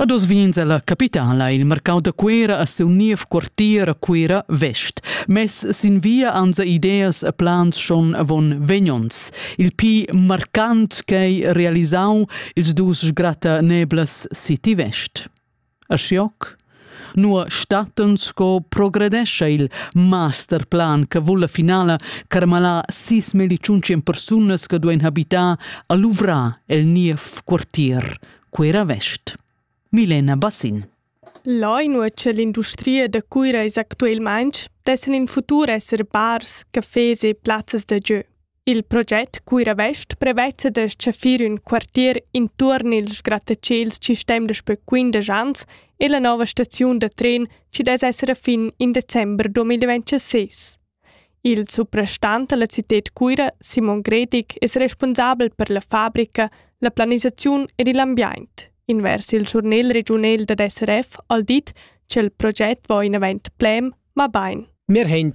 A dos vins è la capitala il marcau da Cuera a seu niev quartier a Cuera Vest. Mess sin via anza ideas e plans schon avon vegnons. Il pi marcant ch'ei realisau ils dus sgratta neblas City Vest. A Scioc? Nua stattan sco progredescha il masterplan che vul la finala carmalar sis mediciuntschen persunas che duein habitar a luvrar el niev quartier, Cuera Vest. Milena Bassin. Là inua c'è l'industria da Cuira es actualmain, dessan in futur esser bars, cafés e plazzas da gieu. Il proget Cuira-Vest prevezza da stgaffir ün quartier intuorn ils grattaciels chi stem daspö quindesch ans e la nouva staziun da tren chi dess esser a fin in december 2026. Il suprastant da la cited Cuira, Simon Gredig, es responsabel per la fabrica, la planisaziun ed il ambiaint. Invers il schurnel regiunel dad SRF al dit ch'el proget vo inavant plem, ma bain. Wir haben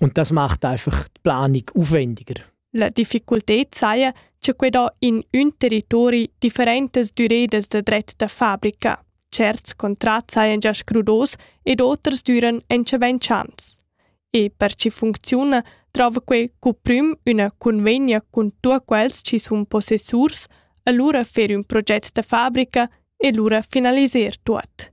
Und das macht einfach die Planung aufwendiger. La difficultad saja, che quei do in un territori differentes durées de dret da fabrica. Certs contrats sajan già scrudos ed oters duran entscheven chans. E per ci funziona, trova quei cuprim una convegna con tu quels ci sun possessurs, allora fer un proget da fabrica e lura finaliser tuot.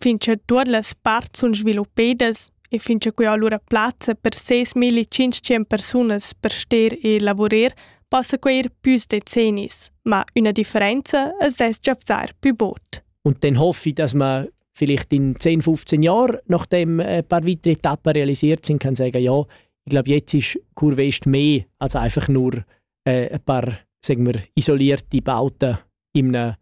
fin cha tuot las parts sun sviluppedas e fin cha que ho lura plazza per ses milletschintschient persunas per ster e lavurer possa quai ir püs decennis, ma üna differenza as dess giafzar pü bod. Und dann hoffe ich, dass man vielleicht in 10, 15 Jahren, nachdem ein paar weitere Etappen realisiert sind, kann sagen, ja, ich glaube, jetzt ist Kurve Est mehr als einfach nur äh, ein paar sagen wir, isolierte Bauten in einem,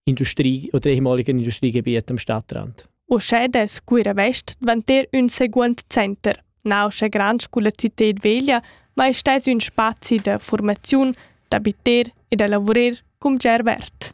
Industrie oder ehemaligen Industriegebiet am Stadtrand. Uschè dess Cuira West dvanter ün seguond center. Nauscha grand sculla cited veglia, ma es stais ün spazi da formaziun, d'abiter e da lavurer cum ger vert.